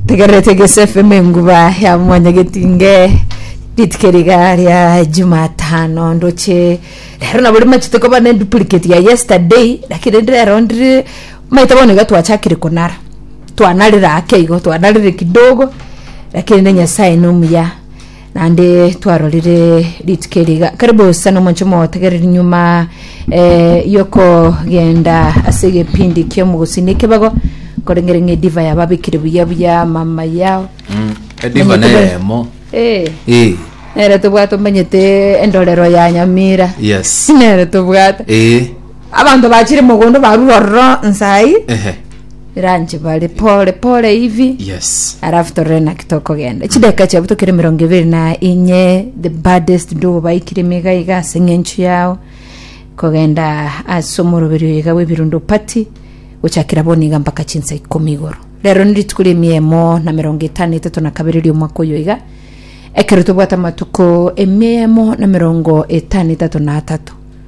Tegererete Gese FM enguba ya mwanya getinge ritike riga ria Jumatano ndoche rero nabo rimachete koba ne duplicate ya yesterday lakini rende rero ndire maite bono iga twachakire konara twanarire ake igo twanarire kidogo lakini ne Nyasaye nomuya naende twarorire rituko eri iga karibu sana omonche motegereri nyuma eh, yokogenda ase egepindi kia omogosini ekebago korengere ng'a ediva yababekire buya buya mama yao ediva Manyete be- neremo Eh, Eh, nere tobwate omanyete endorero ya nyamira yes nere tobwate Eh, Abanto bachire mogondo barure ororo nsai Ehe. ranche bare pole pole hivi Yes. arafu torore naki tokogenda chideka chiabu tokere mirongo ibere na inye the baddest ndogo baikire mega iga ase ng'enchu yao kogenda ase omoroberio iga bw'ebirundo pati gochakera boni iga mpaka chinsa ikomi igoro rero ni rituko ria emia emo na mirongo etano etato na kabere ria omwaka oyo iga ekero tobwate amatuko emia emo na mirongo etano etato na atato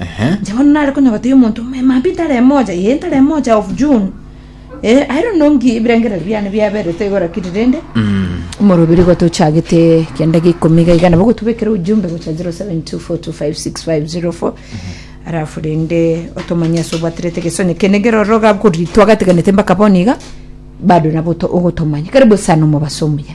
Ehe. Inche bono nare konyogota yo omonto omogima mambia intara emoja, yee intara emoja of June. Eh, I don't know nki ebirengererio biane biaberete igo rakiri rende Mm. omorobiri igo tochagete kianda gia ikomi iga iga nabo gotobekera ujumbe gocha 0724256504 arafu rende otomanye ase obwaterete egesonye kene keroro gab kori twagateganete mpaka bono iga bado nabo to- ogotomanya karibu sana omobaso omuya